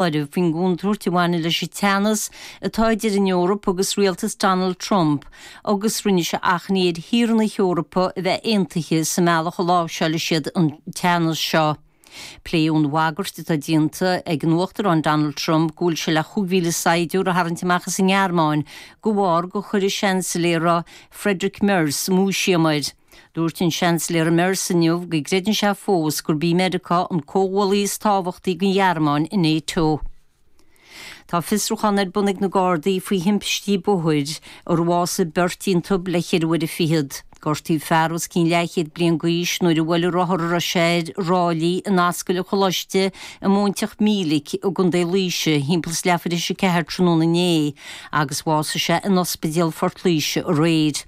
áireamh faoin gcontúirt a bhaineann leis an teannas atá idir an Eoraip agus rialtas Donald Trump agus rinne sé achainí ar thíortha na hEorpa a bheith aontaithe sa mbealach a láimhseálfaidh siad an teannas seo. Pléadh an bhagairt atá déanta ag an Uachtarán Donald Trump go bhfuil sé le chúig mhíle saighdiúr a tharraingt amach as an nGearmáin de bharr gur chuir an Seansailéara Friedrich Merz múisiam air Dúirt an Seansailéara Merz inniu go gcreideann sé fós gurb í Meiriceá an comhghuaillí is tábhachtaí don Ghearmáin i NATO. Tá fiosrúchán ar bun ag na Gardaí faoi thimpistí bóthair inar bhásaigh beirt iontub le ceithre uaire fichead. Gortaíodh fear os cionn leathchéad bliain d'aois nuair a bhuail an rothar a raibh sé air ráillí in Ascaill an Choláiste i Móinteach Mílic i gContae Laoise thimpeall is leathuair thar éis a ceathair tráthnóna inné agus bhásaigh sé in Ospidéal Phort Laoise aréir.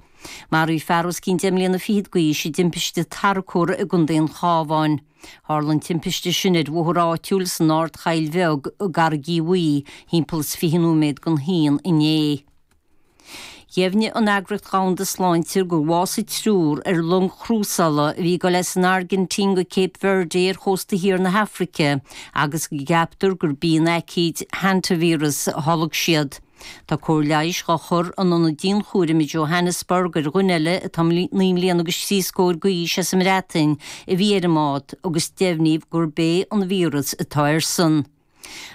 Maraíodh fear os cionn deich mbliana fichead d'aois i dtimpiste tarracóra i gContae an Chabháin. Tharla an timpiste sin ar bhóthar áitiúil san Ardchoill Bheag i gCarraigigh Bhuí thimpeall is fiche nóiméad don haon inné. Dheimhnigh an Eagraíocht Dhomhanda Sláinte gur bhásaigh triúr ar long chrúsála a bhí ag dul as an Airgintín go Cape Verde ar chósta thiar na hAfraice agus go gceaptar gurb í an aicíd Hantavirus a tholg siad. Tá cóir leighis dhá chur in ionad dianchúraim i Johannesburg ar dhuine eile atá naoi mbliana agus trí scór d'aois as an mBreatain a bhí ar an mbád agus deimhníodh gurb é an víreas atá airsean.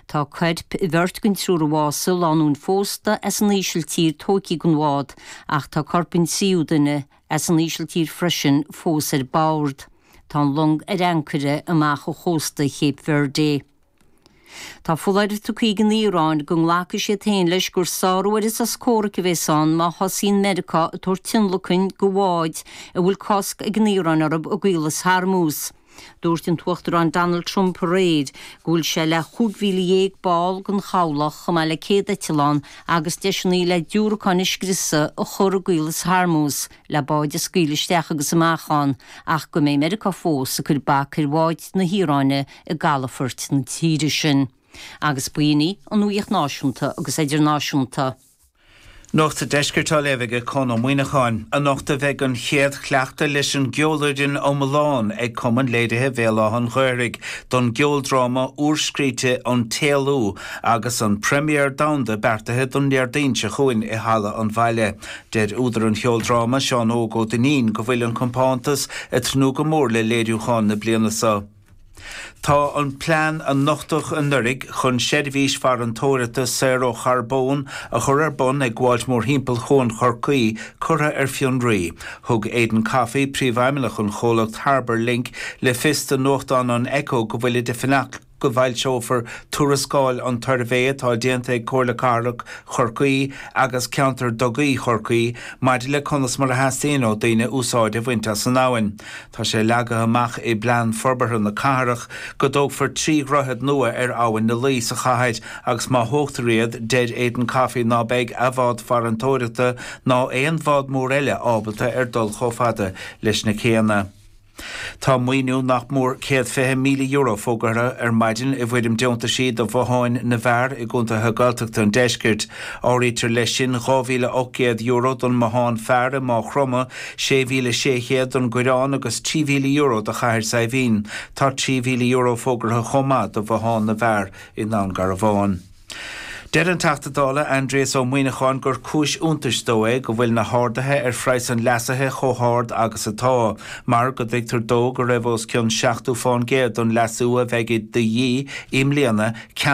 Tá coirp bheirt den triúr a bhásaigh lánúin phósta as an Ísiltír tóigthe den bhád ach tá corp an tríú duine as an Ísiltír freisin fós ar bord. Tá an long ar ancaire amach ó chósta Cape Verde. Tá foláireamh tugtha ag an Iaráin go nglacfaidh siad féin leis gur sárú ar an sos comhraic a bheas ann má thosaíonn Meiriceá ag tabhairt tionlacain do bháid a bhfuil cosc ag an Iaráin orthu i gCaolas Hormuz. Dúirt an tUachtarán Donald Trump aréir go bhfuil sé le 15,000 ball den chabhlach, chomh maith le 100 eitleán agus deiseanna le diúracáin a scriosadh, a chur i gCaolas Hormuz. le báid a scaoileadh isteach agus amach ann, ach go mbeidh Meiriceá fós ag cur bac ar bháid na hIaráine i gcalafoirt na tíre sin. Agus b'in í an nuaíocht náisiúnta agus eidirnáisiúnta. Nuacht an Deiscirt á léamh ag Conn Ó Muíneacháin, anocht a bheidh an chéad chleachtadh leis an gceolfhoireann iomlán ag Cumann Léirithe Bhéal Átha an Ghaorthaidh don gceoldráma úrscríte An tÉalú agus an première domhanda beartaithe don Déardaoin seo chugainn i Halla an Bhaile, Deir údar an cheoldráma, Seán Óg Ó Duinnín, go bhfuil an compántas ag tnúth go mór le léiriúchán na bliana so. Tá an plean a nochtadh anuraidh chun seirbhís farantóireachta saor ó charbón a chur ar bun ag gabháilt mórthimpeall Chuan Chorcaí curtha ar fionraí. Thug Aidan Coffey, príomhfheidhmeannach an chomhlacht Harbour Link, le fios do nuachtán an Echo go bhfuilid ag fanacht go bhfoilseofar tuarascáil an tsuirbhé atá déanta ag Comhairle Cathrach Chorcaí agus Ceantar Dugaí Chorcaí maidir le conas mar a theastaíonn ó daoine úsáid a bhaint as an abhainn. Tá sé leagtha amach i bplean forbartha na cathrach go dtógfar trí dhroichead nua ar Abhainn na Laoi sa chathair agus má thógtar iad, deir Aidan Coffey ná beidh a bhád farantóireachta ná aon bhád mór eile ábalta ar dul chomh fada leis na céanna. Tá maoiniú nach mór céad fiche míle euro fógartha ar maidin i bhfoirm deontaisí do bhotháin na bhfear i gcontaetha Gaeltachta an deiscirt. Áirítear leis sin dhá mhíle ocht gcéad euro don mbothán fear i Máigh Chromtha, sé mhíle sé chéad don gCoireán agus trí mhíle euro do Chathair Saidhbhín. Tá trí mhíle euro fógartha chomh maith do bhothán na bhfear i nDún Garbhán. Deir an Teachta Dála Aindrias Ó Muíneacháin gur cúis iontais dó é go bhfuil na harduithe ar phraghas an leasaithe chomh hard agus atá, mar go dtuigtear dó go raibh os cionn seachtú fán gcéad don leasú a bheidh de dhíth i mbliana,